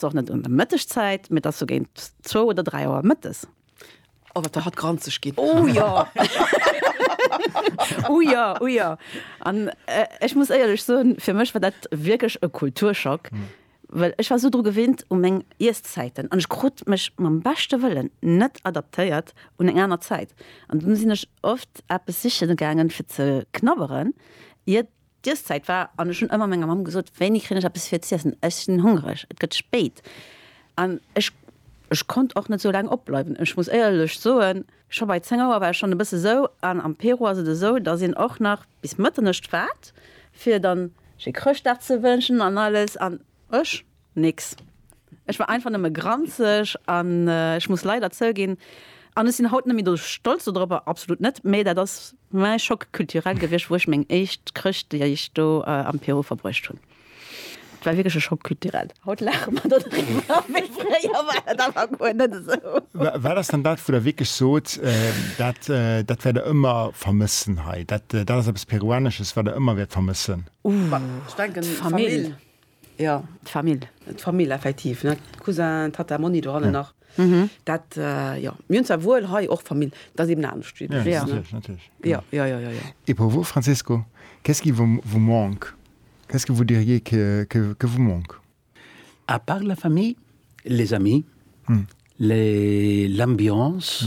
Ass och net un der Mëttegzäit, mee et ass sou géint zwou oder dräi Auer mëttes. Oh, wat der hatt granzeg ginn. Oh jo! Oh jo, oh jo! An ech muss éierlech soen, fir mech war dat wierklech e Kulturschock, well ech war sou dru gewinnt, u meng Iesszäiten. An ech krut mech mam beschte Wëllen net adaptéiert un eng aner Zäit. An dunn sinn ech oft eppes siche gaangen, fir ze knabberen, iert D'Iesstäit war, an ech hunn ëmmer menger Mamm gesot, Wéini kréien ech eppes fir z'iessen? Ech sinn hongreg, et gëtt spéit. An ech, ech konnt och net esou laang opbleiwen. Ech muss éierlech soen, scho bei zéng Auer war ech schonn e bësse sou. An am Peru ass et esou, dass een och nach bis Mëtternescht waart, fir dann sche Chrëschtdag ze wënschen an alles. An ech Nix. Ech war einfach nëmme granzeg an ech muss leider zouginn, an ech sinn haut net méi do stolz dodropper, absolut net, mä dat ass mäi Choc culturel gewiescht, wou ech meng éischt Chrëschtdeeg do am Peru verbruecht hunn. Et war wierklech e Choc culturel. Haut laache mer dodriwwer, mä fréier war dat einfach guer net esou. Wat ass dann dat, wou Der wierklech sot, dat, dat wäert Der ëmmer vermëssen hei, dat, dat ass eppes Peruanesches, wat Der ëmmer wäert vermëssen? Ech denken d'Famill. Jo, d'Famill. D'Famill effektiv, ne, Cousin, Tata, Monni do hannen nach. Dat, jo, mir hunn zwar wuel hei och Famill, et ass eben anescht wéi do. Ja, natierlech, natierlech. Jo, jo, jo, jo, jo. Et pour vous, Francesco, qu'est-ce qui vous, vous manque? Qu'est-ce que vous diriez que, que, que vous manque? À part la famille, les amis, les, l'ambiance.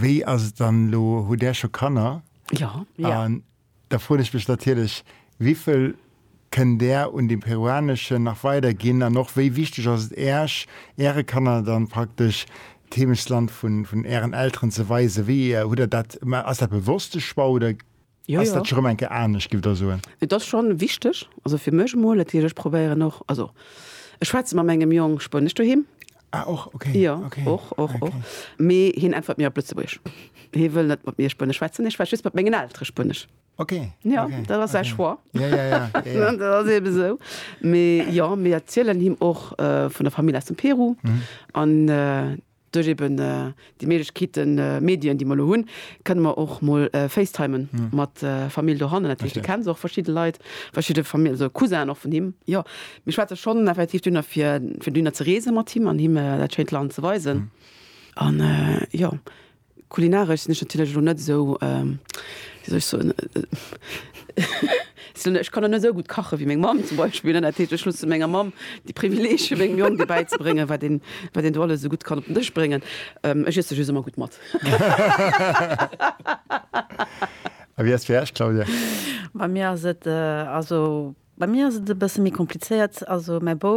Wéi ass et dann elo? Hutt Där scho Kanner? Jo. An da froen ech mech natierlech, Wivill kënnt Där un de Peruaneschen nach weiderginn? An och, wéi wichteg ass et Äerch, Äre Kanner dann praktesch d'Heemechtsland vun Ären Elteren ze weisen? Wéi hutt Der dat, ass dat bewosste Choix oder? Jo, jo. Ass dat scho rëm eng Kéier anescht, giff der soen? Et ass schonn wichteg, also fir mech emol. Natierlech, ech probéieren och, also ech schwätze mat mengem Jong Spuenesch doheem. Ah, och, okay. Jo, okay. och, och, och. Okay. Mee hien äntwert mir op Lëtzebuergesch. Hie wëll net mat mir Spuenesch schwätzen. Ech schwätz just mat mengen Eltere Spuenesch. Okay, Jo, okay, dat ass säi okay. Choix. Ja, ja, ja, ja, ja. Dat ass eebe sou. Mee jo, mir erzielen him och vun der Famill aus dem Peru an. Duerch eben déi Méiglechkeeten, Medien, déi mer elo hunn, kënne mer och mol facetimen mat Famill dohannen. Dat heescht, de kennt och verschidde Leit, verschidde Famill, also Cousin och vun him. Jo, mir schwätze schonn effektiv dünner, fir dünner ze reese mat him an him dat schéint Land ze weisen. An jo, Kulinaresch sinn ech natierlech elo net esou, wéi soll ech soen, ech kann elo net esou gutt kache wéi meng Mamm zum Beispill, dat heescht, ech hunn et zu menger Mamm de Privileeg fir mengem Jong do bäizebréngen, wat een, wat een do alles esou gutt kann op den Dësch bréngen. Ech iesse just ëmmer gutt mat. A wéi ass fir Iech, Claudia? Bei mir ass et, also bei mir ass et e bësse méi komplizéiert. Also mäi Bouf,